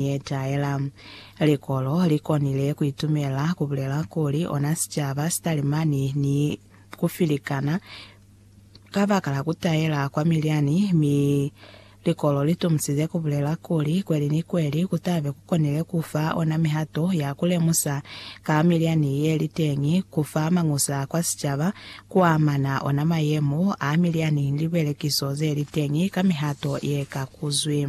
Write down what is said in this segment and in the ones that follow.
yetaela. Likolo li konile ku itumela ku bulela kuli ona sicaba si talimani ni ku filikana kabakala ku taela kwa milyani, mi likolo li tomusize ku bulela kuli kweli ni kweli ku tabe ku konile ku fa ona mihato ya ku lemusa ka milyani ye li teñi, ku fa mañusa kwa sicaba ku amana ona mayemo a milyani ni libelekiso ze li teñi ka mihato ye ka kuzwi.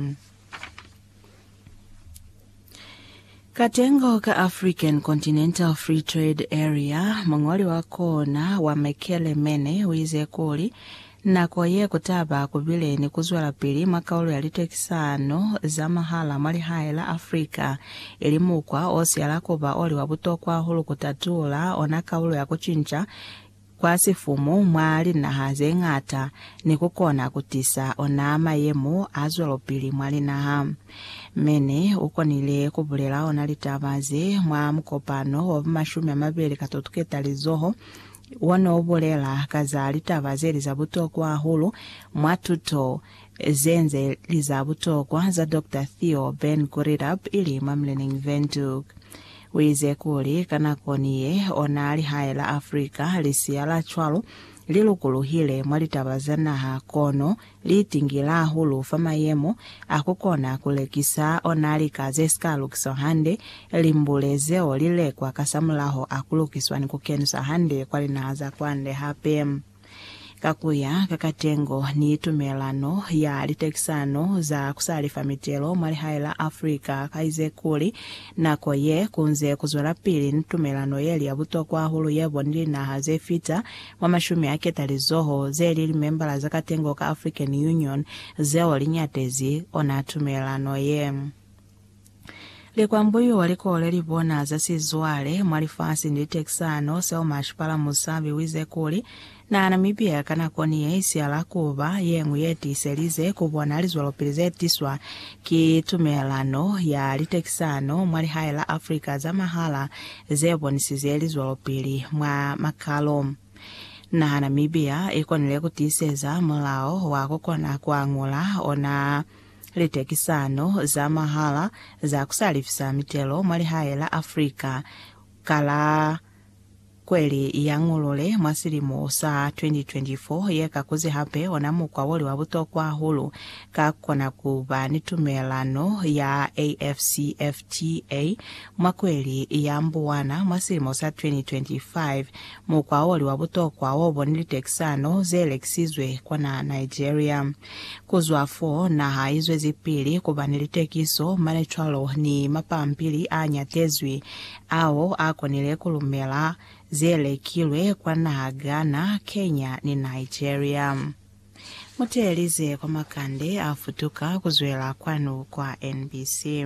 Katengo ka African Continental Free Trade Area, muñoli wa kona wa Mekele Mene uize kuli, Nako ye kutaba kubile ni kuzwelapili mwa kaulo ya litekisano za mahala mwa lihae la Africa, ili mukwa osiyala kuba oli wa butokwa hahulu kutatula ona kaulo ya kucinca kwa sifumu mwa linaha ze ñata ni ku kona ku tisa ona mayemo a zwelopili mwa linaha. Mene u konile ku bulela ona litaba ze mwa mukopano wa ba mashumi a mabeli ka tutuketalizoho wo ne u bulela ka za litaba ze li za butokwa hahulu mwa tuto ze nze li za butokwa za Doctor Theo Ben Gurirab ili mwa Mlenneng Windhoek. Uize kuli, ka nakoni ye, ona lihae la Africa, lisiya la cwalo, li lukuluhile mwa litaba za naha, kono liitingile hahulu fa mayemo a kukona kulekisa ona lika zesika lukiswa hande, limbule zeo lilekwa kasamulaho a kulukiswa ni kukeniswa hande kwa linaha za kwande hape. Ka ku ya ka katengo ni tumelano ya litekisano za ku sa lifa mitelo mwa lihae la Africa, ka Izekuli, nako ye ku nze ku zwelapili ni tumelano ye li ya butokwa hahulu ye bo ni linaha ze fita mwa mashumi a ketalizoho ze li limembala za katengo ka African Union zeo li ñatezi ona tumelano ye. Likwambuyo wa likole li bona za sizwale mwa lifasi ni litekisano. Selma Shipala Musabi wize kuli, Na Namibia ka nako ni ye isihala kuba yeñwi ye tiiselize ku bona lizwelopili ze tiswa ki tumelelano ya litekisano mwa lihae la Africa za mahala ze bonisize lizwelopili mwa makalo. Naha Namibia i konile ku tiiseza mulao wa ku kona ku añula ona. Litekisano za mahala za ku sa lifisa mitelo mwa lihae la Africa ka la kweli ya Ngolole mwa silimo sa 2024 ye ka kuzi hape ona mukwa oli wa butokwa hahulu ka kona ku ba ni tumelano ya AfCFTA mwa kweli ya Mbuwana mwa silimo sa 2025. Mukwa oli wa butokwa wo boni litekisano ze lekisizwe kwa naha Nigeria. Ku zwa fo, naha i zwezipili ku ba ni litekiso, mane cwalo ni mapampili a ñatezwi ao a konile ku lumela ze lekilwe kwa naha Ghana, Kenya ni Nigeria. Mu teelize kwa makande a futuka ku zwela kwanu kwa NBC.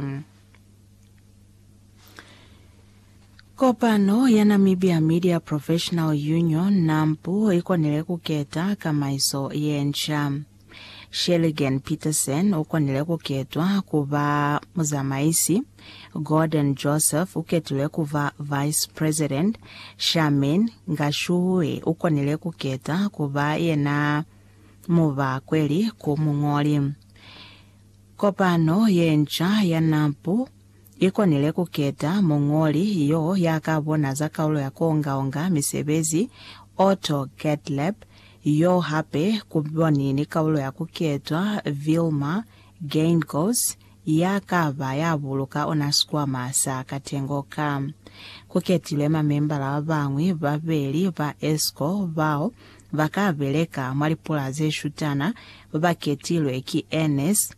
Kopano ya Namibia Media Professional Union, NAMPU, i konile ku keta kamaiso ye nca. Shelligen Petersen u konile ku ketwa ku ba muzamaisi, Gordon Joseph u ketilwe ku ba vice president, Charmaine Ngashuhi u konile ku keta ku ba yena mubakweli ku muñoli. Kopano ye nca ya NAMPU I konile ku keta muñoli yo ya ka bona za kaulo ya ku onga-onga misebezi, Otto Gottlieb, yo hape ku boni ni kaulo ya ku ketwa Vilmar Geingos ya ka ba ya buluka ona sikwama sa katengo ka. Ku ketilwe mamembala ba bañwi ba beli ba ESCO bao ba ka beleka mwa lipula ze shutana, ba ketilwe ki Ernest,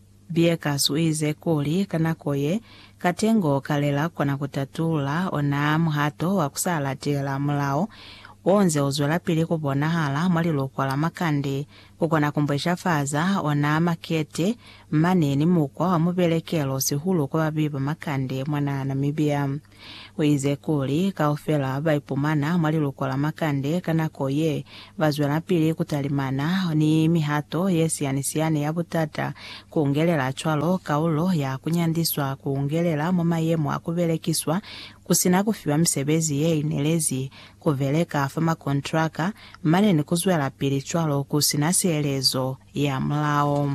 Bieckers u ize kuli ka nako ye, katengo ka le la kona ku tatulula ona muhato wa ku sa latela mulao wo nze u zwelapili ku bonahala mwa lilukwa la makande, ku kona ku mbweshafaza ona makete mane ni mukwa wa mubelekelo sihulu kwa babeyi ba makande mwa naha Namibia. Uize kuli, Kaufela baipumana mwa liluko la makande ka nako ye, bazwelapili kutalimana ni mihato yesiyanisiani ya butata, kuungelela cwalo kaulo ya kunyandiswa, kuungelela mwa mayemo a kubelekiswa kusina kufiwa misebezi yeinelezi, kubeleka fa makontraka, mane ni kuzwelapili cwalo kusina sielezo ya mulao.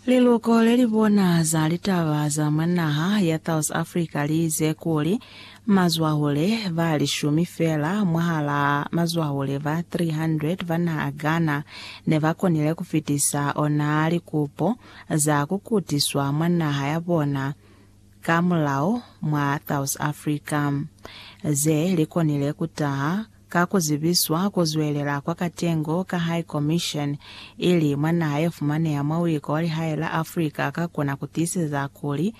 Liluko le li bona za litaba za mwa naha ya South Africa li ize kuli mazwahule ba lishumi fela mwahala mazwahule ba 300 ba naha Ghana ne ba konile ku fitisa ona likupo za ku kutiswa mwa naha ya bona ka mulao mwa South Africa, ze li konile ku taha ka ku zibiswa ku zwelela kwa katengo ka High Commission, ili mwa naha ye fumaneha mwa uiko wa lihae la Africa ka kona ku tiiseza kuli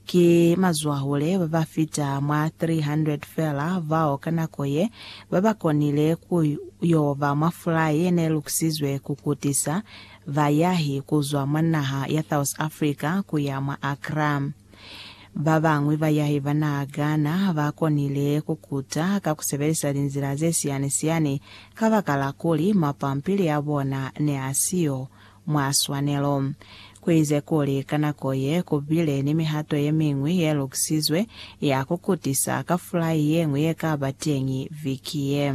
ki mazwahule ba ba fita mwa 300 fela bao ka nako ye ba ba konile ku yo ba mwa fulai ye ne lukisizwe ku kutisa Bayahi kuzwa mwa naha ya South Africa kuya mwa Accra. Babañwi bayahi ba naha Ghana bakonile kukuta ka kusebelisa linzila zesiyani-siyani kabakala kuli mapampili abona neasiyo mwa swanelo. Kuize kuli ka nako ye, kubile ni mihato yemiñwi yelukisizwe ya kukutisa ka fulai yeñwi yekaba teñi viki ye.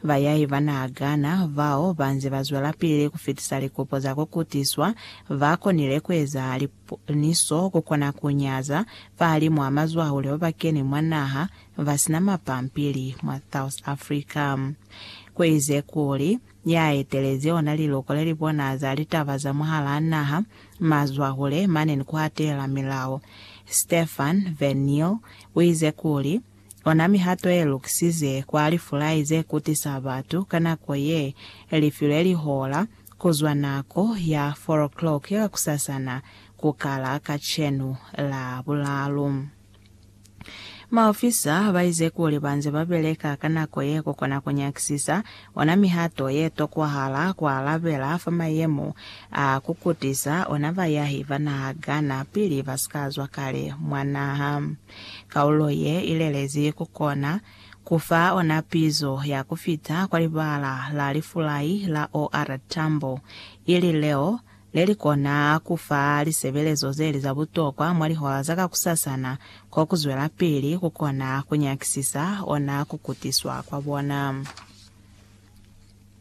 Bayai ba na gana bao ba nze ba zwelapili ku fitisa likopo za ku kutiswa ba konile ku eza liponiso ku kona ku nyaza fahalimu a mazwahule ba ba keni mwa naha ba si na mapampili mwa South Africa. Ku ize kuli, ya etelezi ona liluko le li bona za litaba za mwahalaa naha, mazwahule mane ni ku hatela milao. Stefan Van Niel u ize kuli, Ona mihato ye lukisize kwa lifulai ze kutisa batu ka nako ye lifilwe lihola, ku zwa nako ya four o'clock ya kakusasana ku kala kacenu Labulalu. Maofisa ba ize kuli ba nze ba beleka ka nako ye ku kona ku nyakisisa ona mihato ye tokwahala ku alabela fa mayemo a ku kutisa ona bayahi ba naha Ghana pili ba si ka zwa kale mwa naha. Kaulo ye i lelezi ku kona ku fa ona pizo ya ku fita kwa libala la lifulai la OR tambo, ili leo le li kona ku fa lisebelezo ze li za butokwa mwa lihola za kakusasana ko ku zwelapili ku kona ku nyakisisa ona ku kutiswa kwa bona.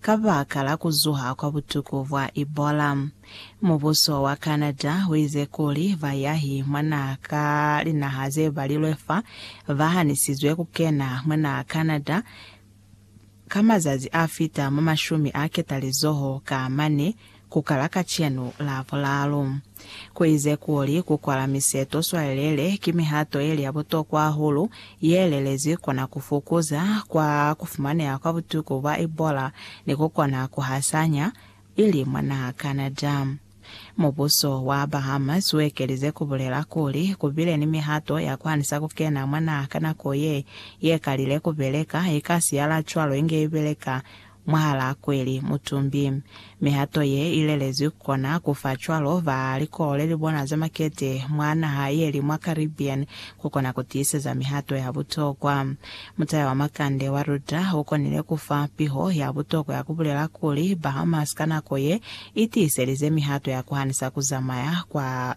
Kabaka la kuzuha kwa butuku bwa Ebola, mubuso wa Canada uize kuli bayahi mwa naha ka linaha zebalilwe fa bahanisizwe kukena mwa naha Canada ka mazazi afita mwa mashumi a ketalizoho ka mane ku kala kacenu la bulaalu. Ku ize kuli ku kwala miseto swalelele ki mihato yeli ya butokwa hahulu ye lelezwi kona ku fukuza kwa ku fumaneha kwa butuku bwa Ebola ni ku kona ku hasanya ili mwa naha Canada. Mubuso wa Bahamas u ekelize ku bulela kuli ku bile ni mihato ya ku hanisa ku kena mwa naha ka nako ye ye kalile ku beleka, i kasi ya la cwalo inge i beleka mwahalaa kweli, mutumbi. Mihato ye i lelezwi ku kona ku fa cwalo ba likolo le li bona za makete mwa naha ye li mwa Caribbean ku kona ku tiiseza mihato ya butokwa. Mutaya wa makande wa Rudra u konile ku fa piho ya butokwa ya ku bulela kuli, Bahamas ka nako ye i tiiselize mihato ya ku hanisa ku zamaya kwa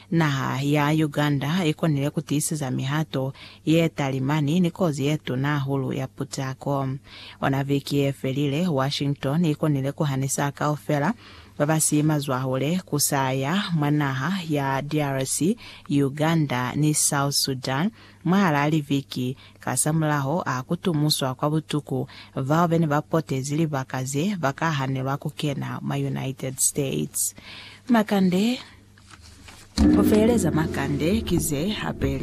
Naha ya Uganda i konile ku tiiseza mihato ye talimani ni kozi ye tuna hahulu ya putako. Ona viki ye felile, Washington i konile ku hanisa kaufela ba ba si mazwahule ku sa ya mwa naha ya DRC, Uganda ni South Sudan Mwahalaa liviki kasamulaho a kutumuswa kwa butuku bao bene ba potezi libaka ze ba ka hanelwa kukena mwa United States. Makande, Ku feeleza makande ki ze hapeli.